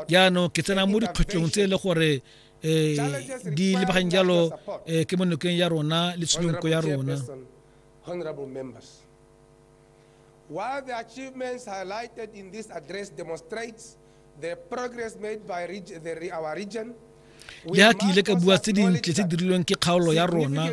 jaanong ke tsena mo dikgwetlhong tse e le gore um di lebageng jalo um ke mo nokeng ya rona le tshedonko ya rona While the achievements highlighted in this address demonstrates the progress made by reg the, our region, le ha ke ile ka bua tse dintle tse dirilweng ke kgaolo ya rona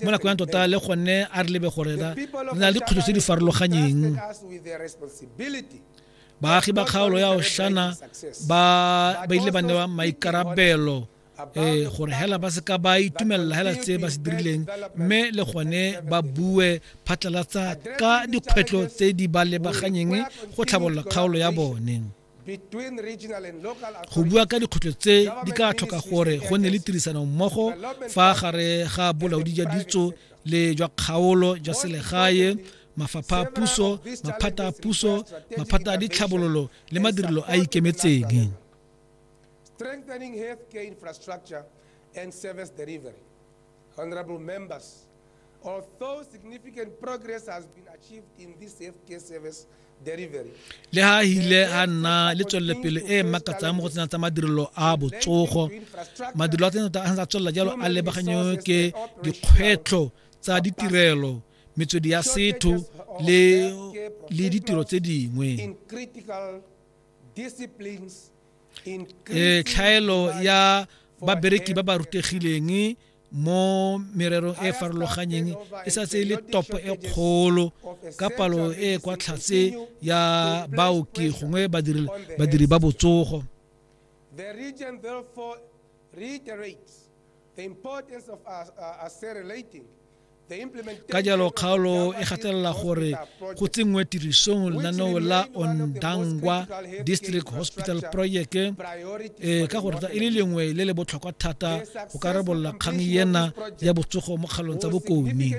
mo nako ya tota le gone a re lebe gore re na le dikgwetlho tse di farologanyeng baagi ba kgaolo ya oshana ba ba ile ba newa maikarabelo eh gore hela ba se ka ba itumelela hela tse ba se dirileng mme le gone ba bue phatlalatsa ka dikgwetlho tse di ba lebaganyeng go tlhabolola kgaolo ya bone go bua ka dikgwetlho tse di ka tlhoka gore go nne le tirisano mmogo fa gare ga bolaodi jwa ditso le jwa kgaolo jwa selegae mafapha a puso maphata a puso maphata a ditlhabololo le madirelo a ikemetseng strengthening healthcare infrastructure and service delivery honorable members although significant progress has been achieved in this healthcare service le ha hile a nna le tswelelopele e e makatsang mo go tsena tsa madirelo a botsogo madirelo a tsena a tswelela jalo a lebaganyo ke dikgwetlho tsa ditirelo metswedi ya setho le le ditiro tse dingwe e tlhaelo ya babereki ba ba rutegileng mo mererong e farologanyeng e sa tse e le topo e kgolo ka palo e kwa tlhatse ya baoki gongwe badiri ba botsogo The region therefore reiterates the importance of uh, uh, accelerating ka jalo kgaolo e gatelela gore go tsenngwe tirisong lenaneo la ondangwa district hospital project e ka gore e le lengwe le le botlhokwa thata go ka rebolola kgang ena ya botsogo mo kgaolong tsa bokomi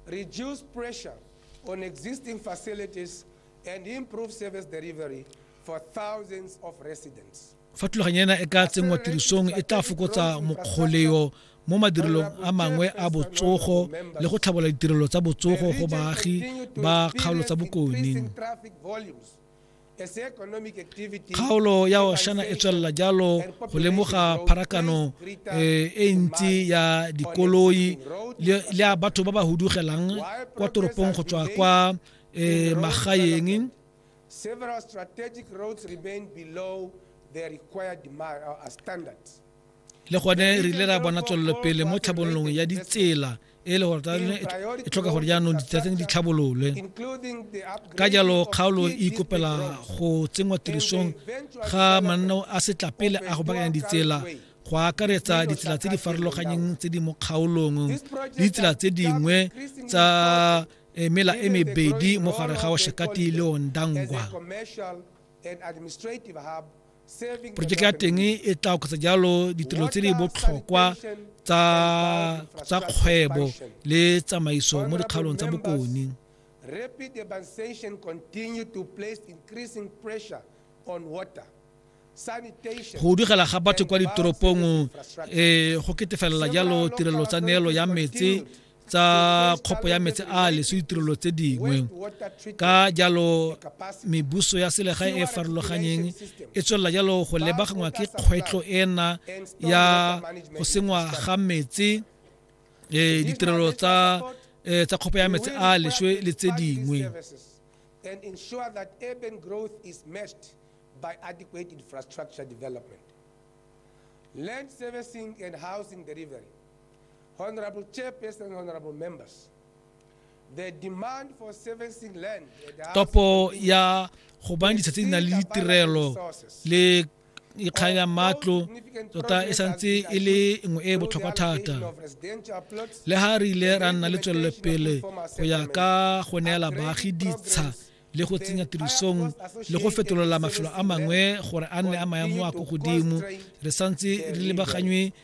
reduce pressure on existing facilities and improve service delivery for thousands of residents. fa thulaganyo ena e ka tsenngwa tirisong e tla fokotsa mokgoleo mo madirelong a mangwe a botsogo le go tlhabola ditirelo tsa botsogo go baagi ba kgaolo tsa bokone kgaolo ya oshana e tswelela jalo go lemoga pharakano eh, e ntsi ya dikoloi le ya batho ba ba hudugelang kwa toropong go tswa kwa eh, magaeng Several strategic roads remain below their required uh, standards. le gone re ile ra bona tswelelopele mo tlhabololong ya ditsela e le gore tsone e tlhoka gore jaanong ditsatseng di tlhabololwe ka jalo kgaolo e ikopela go tsenngwa tirisong ga mananeo a setlapele a go bakanya ditsela go akaretsa ditsela tse di farologanyeng tse di mo kgaolong le ditsela tse dingwe tsa e mela e mebedi mo gare ga oshakati le ondangwa porojeke ya teng e tla oketsa jalo ditirelo tse di botlhokwa tsa kgwebo le tsamaiso mo dikgaolong tsa bokone rapid urbanization continue to place increasing pressure on water go dugela ga batho kwa ditoropong um go ketefelela jalo tirelo tsa neelo ya metse tsa kgopo ya metsi a leso ditirelo tse dingwe ka jalo mebuso ya selegae e farologanyeng e tswelela jalo go lebagangwa ke kgwetlho ena ya go sengwa ga metsi eh, ditirelo tsa eh, tsa kgopo ya metsi a leswe le tse dingwe and ensure that urban growth is matched by adequate infrastructure development. Land servicing and housing delivery Honorable Chairperson and Honorable Members, the demand for servicing land topo ya go bang ditsha tse di nang le ditirelo le ikgang ya matlo tota e santse e le nngwe e e botlhokwa thata le ga re ile ra nna le tswelelopele go ya ka go neela baagi ditsha le go tsenya tirisong le go fetolola mafelo a mangwe gore a nne a maemo a ko godimo re santse re lebaganywe